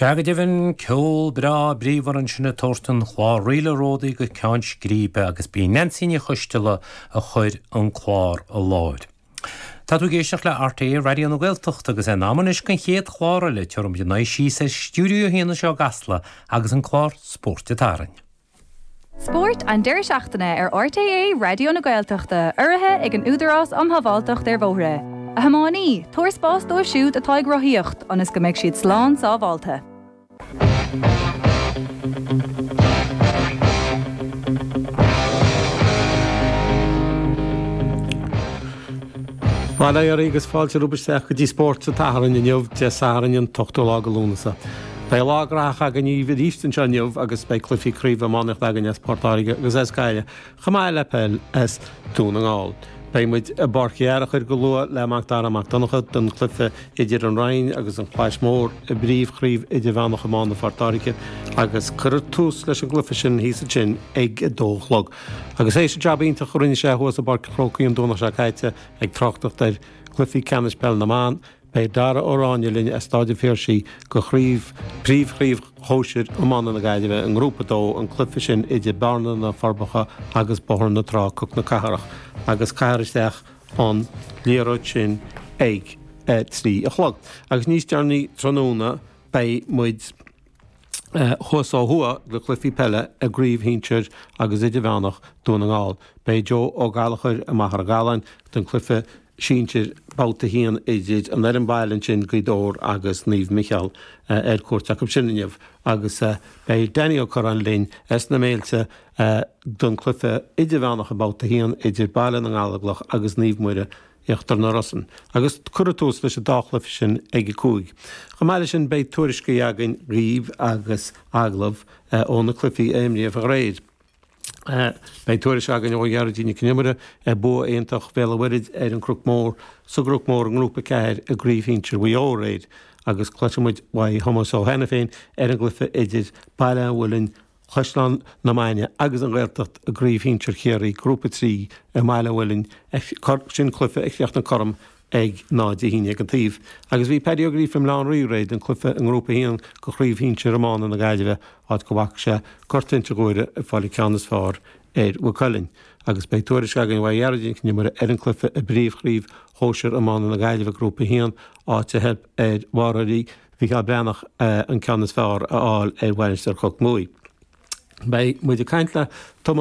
Sea go deimhin, ceol breá bríomhar ansin ag tabhairt an chláir Ríle Ródaí go ceann scríbe agus ba í Neansaí Ní Choisdealbha a chuir an clár i láthair. Tá tú ag éisteacht le RTÉ Raidió na Gaeltachta agus é in am anois don chéad chlár eile, tabharfaidh muid ár n-aghaidh síos ar Stiúideo 1 anseo i gCasla agus an clár Spórt an tSathairn. Spórt an deireadh seachtaine ar RTÉ Raidió na Gaeltachta, urraithe ag an Údarás um Shábháilteacht ar Bhóithre. A thiománaí, tabhair spás dóibh siúd atá ag rothaíocht ionas go mbeidh siad slán sábháilte. Bail ó Dhia oraibh agus fáilte romhaibh isteach go dtí Spórt an tSathairn inniu, Dé Sathairn an t-ochtú lá de Lúnasa. Beidh lá graitheach againn daoibh arís anseo inniu agus beidh cluichí craoibhe iománaíochta againn as Port Láirge agus as Gaillimh, chomh maith le peil as Dún na nGall. Beidh muid i bPáirc Uí Fhearchair go luath le Mac Dara Mac Donncha don cluiche idir an Rinn agus an Chlais Mhór i bPríomhchraobh Idirmheánach Iomána Phort Láirge agus cuirfear tús leis an gcluiche sin thíos ansin ag a dó a chlog. Agus th'éis an jab iontach a rinne sé thuas i bPáirc an Chrócaigh an Domhnach seo caite ag tráchtacht ar chluichí ceannais Peil na mBan, Beidh Dara Ó Ráinne linn as Staid an Phiarsaigh do chraobh príomhchraobh Shóisir Iomána na Gaillimhe i nGrúpa a dó, an cluiche sin idir Bearna na Forbacha agus Bóthar na Trá, Cnoc na Cathrach, agus caithfear isteach an liathróid sin ag a trí a chlog. Agus níos deireanaí tráthnóna beidh muid. Thuas ó thuaidh do chluichí peile i gcraobh shinsir agus idirmheánach Dhún na nGall, beidh Joe Ó Gallchóir i Machaire Gathláin don chluiche sinsir Babhta 1 idir an fhoireann baile ansin, Gaoth Dobhair agus Naomh Micheál ar cuairt acu sin inniu agus beidh Danny Ó Curráin linn as na Méilte don chluiche idirmheánach i mBabhta 1 idir Baile na nGallóglach agus Naomh Muire Íochtar na Rosann, agus cuirfear tús leis an dá chluiche sin ag a cúig. Chomh maith leis sin, beidh tuairiscí againn daoibh agus agallaimh ó na cluichí a imríodh aréir. Beidh tuairisc againn ó Ghearóidín Nic An Iomaire ar bhua iontach Bhéal an Mhuirthid ar an gCnoc Mór sa gCnoc Mór i nGrúpa 4 i gCraobh Shinsir Mhaigh Eo aréir, agus cloisfidh muid uaidh Thomás Ó hAiniféin ar an gcluiche idir Baile an Mhuilinn Caisleán na Mainge agus an Ghaeltacht i gCraobh Shinsear Chiarraí, Grúpa 3, i mBaile an Mhuilinn, Sin cluiche a chríochnaigh cothrom ag náid a haon déag an taobh agus bhí Paddy Ó Gríofa i mBaile Átha an Rí aréir don cluiche i nGrúpa 1 de Chraobh Shinsear Iomána na Gaillimhe áit go bhfaca sé Gort Inse Guaire ag fáil an ceann is fearr ar Mhaigh Cuilinn agus beidh tuairisc againn uaidh Ghearóidín Nic an Iomaire ar an gcluiche i bPríomh Chraobh Shóisir Iomána na Gaillimhe Grúpa 1 áit a theip ar imreoirí Mhicheál Breathnach an ceann is fearr a fháil ar Mhainistir Chnoc Muaidhe. Beidh muid ag caint le Tom.